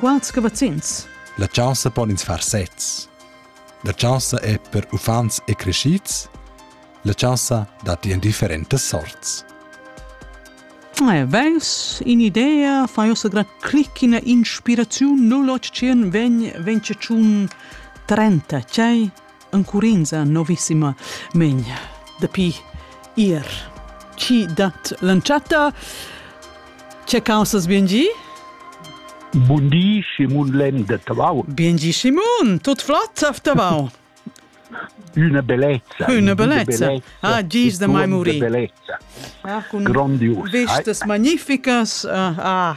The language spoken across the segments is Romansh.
Quals cavazzins? La chanza pon ins far sezs. La chanza è per uffants e crescids. La chanza dat in differentas sorts. Eh, Veis in idea, fai ossa gran clic in inspiraziun 0800 vegn vence tschun 30, c'è encurinza novissima megn dapi ir. Chi dat l'entschatta? Che caussas bien gi? Bun di, Simon Lem de Tavau. Bien gi, Simon, tut flott auf Tavau. Una bellezza. Una bellezza. Ah, gis de mai muri. Bellezza. Ah, con Grandios. Vistas magnificas. Uh, ah.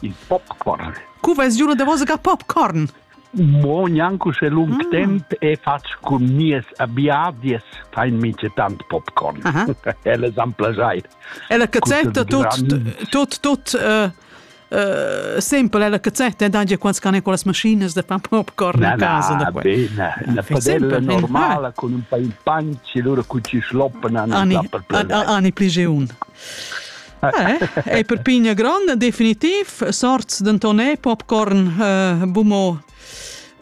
Il popcorn. Cu vais giu la davosa ga popcorn? Mo gnanco se lung mm. temp e fatsch cun mies abiadies fein mice tant popcorn. Ella san plagiai. Ella cazzetta tot tot tot uh, uh, sempre ella cazzetta da dir quants can con las maschines de far popcorn na, a casa na, da bene, la padella normala con un pain panci loro cu ci schloppen hanno ani, ani, ani pligeun Eh, ei per pigna gronda, definitiv. Sorts denton popcorn, uh, bumo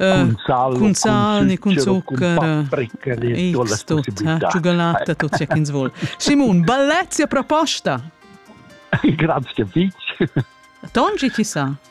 Cun sal, cun sal, cun zuccher, X tut, ciugalata, tut sia ch'ins vuol. Simon, bellezia proposta! Grazie, Fitch. Tongi, ti sa?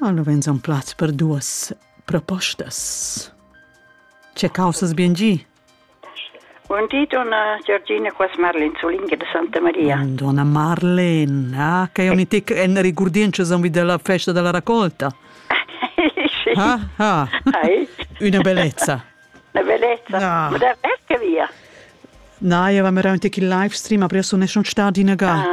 Allo vegns on plaz per duas propostas. Ce causas bien gi? Buon di, donna Giorgina, qua Marlene Zulinga de Santa Maria. Donna Marlene, ah, che io mi tic en ricurdiencio son della festa della raccolta. sì. Ah, ah. Una bellezza. Una bellezza. Ah. Ma da ecce via? Na, io avevo un live stream, adesso ne sono stati in aga. Ah.